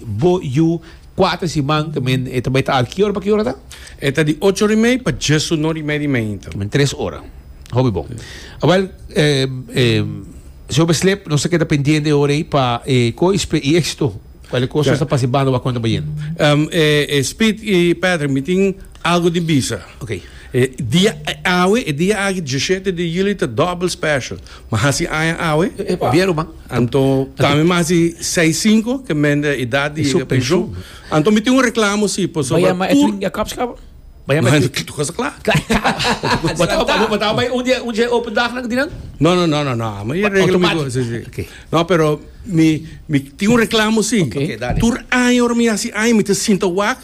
Bo yu kuater siman te men e ta bai traha ki ora pa ki ora ta? E ta di ocho ora i mei pa djes ur no di media i mei ta. Men tres ora. Hopi bon. Awel si hopi slep nos ta keda pendiente e ora ei pa e ko i spri i exito. Kual e kos nos ta pasa i banda wak konta bayen. Um e Speed i Patrick mi tin. Algo di bisa. Ok. E dia e awe, e dia aki dieshete di juli ta dobbel special. Ma hasi aña awe. E Bieru man. Anto ta mi mas di seis sinku ke men di edad di yega penshun. Anto mi tin un reklamo si pasobra tur. Bai yama Edwin Jacobs kaba? Bai yama Edwin. Tudu kos ta kla. Kla kaba. Bo ta bo ta bai un dia un dia open dag nan di nan? No no no no amo e regla mi go si si. Automatic. Ok. No pero mi mi tin un reklamo si. Ok dale. Tur aña ora mi hasi aña mi ta sinta wak.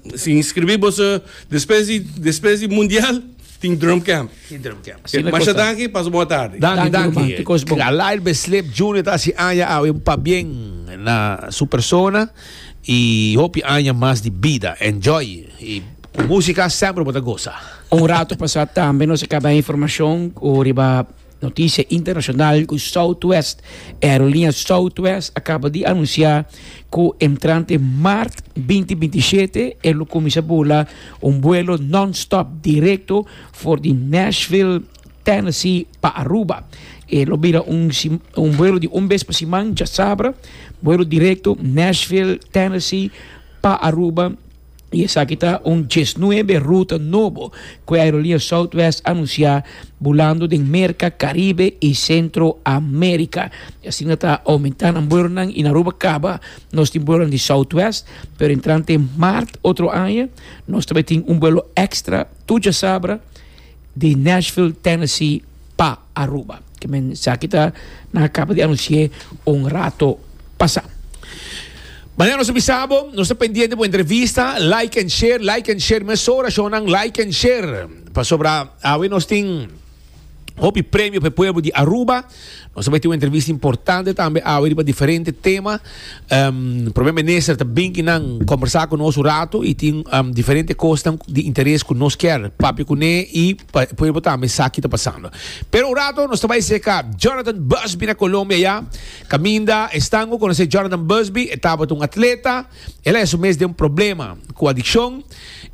Si inscribí boso despues di despues di mundial tin drum camp. Tin drum camp. Asina e Masha danki, pasa bon atardi. Danki ruman, ki kos bon. Alair Beslep Junior ta hasi aña awe un pabien na su persona y hopi aña mas di bida. Enjoy y cu musica semper bo ta goza. Un rato pasá tambe nos a caba informacion cu riba. Noticia internacional cu Southwest Aerolínea Southwest a caba di anuncia cu entrante maart binti binti shete e lo cuminsa bula un vuelo non-stop directo for di Nashville, Tennessee pa Aruba. E lo bira un, un vuelo di un bes pa siman, djasabra, vuelo directo Nashville, Tennessee pa Aruba. y esaki ta un diesnuebe ruta nobo cu e Aerolia Southwest anuncia bulando den Merca, Caribe y Centro America. Y asina ta aumenta nan buelonan y na Aruba caba nos tin buelonan di Southwest, pero entrante maart otro aña nos ta bay tin un buelo extra tur djasabra di Nashville, Tennessee pa. Aruba. Esaki ta nan a kaba di anunsi'é un rato pasá. Manera nos a bisa bo, nos ta pendiente bo entrevista, like and share, like and share mesora shownan, like and share. Pasobra awe nos tin hopi premio pa e pueblo di Aruba. Nos a bai tin un entrevista importante tambe awe riba diferente tema. Prome minister ta bin ki nan kombersá ku nos un ratu i tin diferente kosnan di interes ku nos kier papia kuné i pa e pueblo tambe sa ki ta pasando. Pero un ratu nos ta bai seka Jonathan Busby na Colombia ya. Kaminda esnan ku konosé Jonathan Busby, e tabata un atleta, el a hesu mes den un problema ku adikshon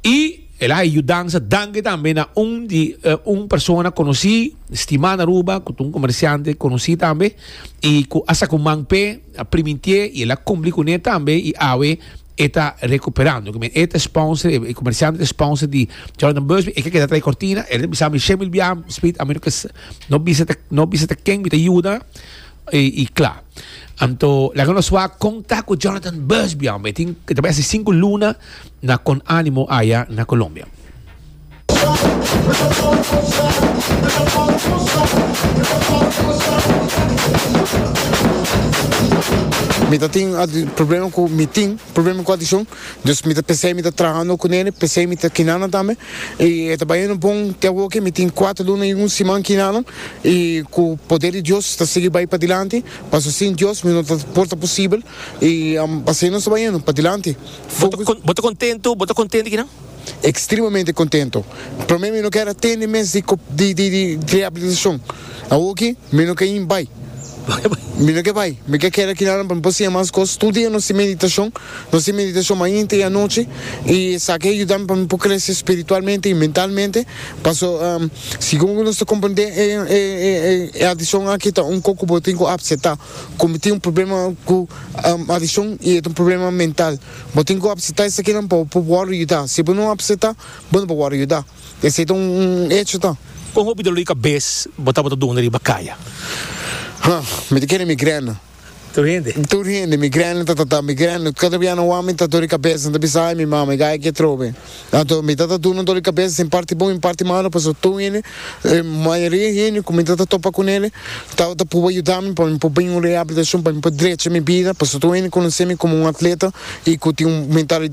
i el a haña yudansa danke tambe na un di un persona konosí, stimá na Aruba, ku ta un komersiante konosí tambe i ku a saka un man p'e. a primintie y el a cumpli cu ne tambe y awe e ta recuperando. Cu men e ta sponsor, e comerciante ta sponsor di Jordan Busby, e ke keda trae cortina, el ta bisa mi Shemil bia Smith, a mi no ke no bisa ta no bisa ta ken mi ta yuda y y cla. Anto laga nos wak con ta cu Jordan Busby, hombre, e tin e ta bai haci cinco luna na Con Animo aya na Colombia. Mi ta tin problema cu mi tin problema cu adiccion dus mi ta pensei mi ta trahando cu nene pensei mi ta kinanan tambe y e ta bayendo bon te awoke mi tin cuatro luna y un siman kinanan y cu poder di Dios ta sigui bay padilanti pasobra sin Dios mi no ta por ta posibel y asina nos ta bayendo padilanti. Bo ta contento? Bo ta contento di kinan? Extremamente contento. Prome mi no kier a tende mes di rehabilitacion. Awoki mi no kier bai. Mi no kier bai. Mi kier keda akinan pa mi por siña mas cos. Tur dia nos tin meditacion. Nos tin meditacion mainta y anochi y esaki a yuda mi pa mi por crece spiritualmente y mentalmente. Paso segun cu nos ta comprende e adiccion aki ta un cosa cu bo tin cu acepta. Cu mi tin un problema cu adiccion y e ta un problema mental. Bo tin ku apseta esakinan pa bo por wòrdu yuda. Si bo no apseta, bo no por wòrdu yuda. Esei ta un echo ta. Kon hopi dolor di kabes bo tabata duna riba kaya? Ha, mi ta kende migrèna. Tur hende? Tur hende. Migrèna ta tata migrèna. Kada bianan wak mi ta dor di kabes, nan ta bisa, Ai, mi mama, i gaya ke trobe. Anto mi ta ta duna doli kabes den parti bon i parti malu pasobra tur hende mayoria hende ku mi ta ta topa ku neli ta ta pruba yuda mi pa mi por bin un reabilitashon pa mi por drecha mi bida pasobra tur hende konosemi komo un atleta i ku tin un mentalidad.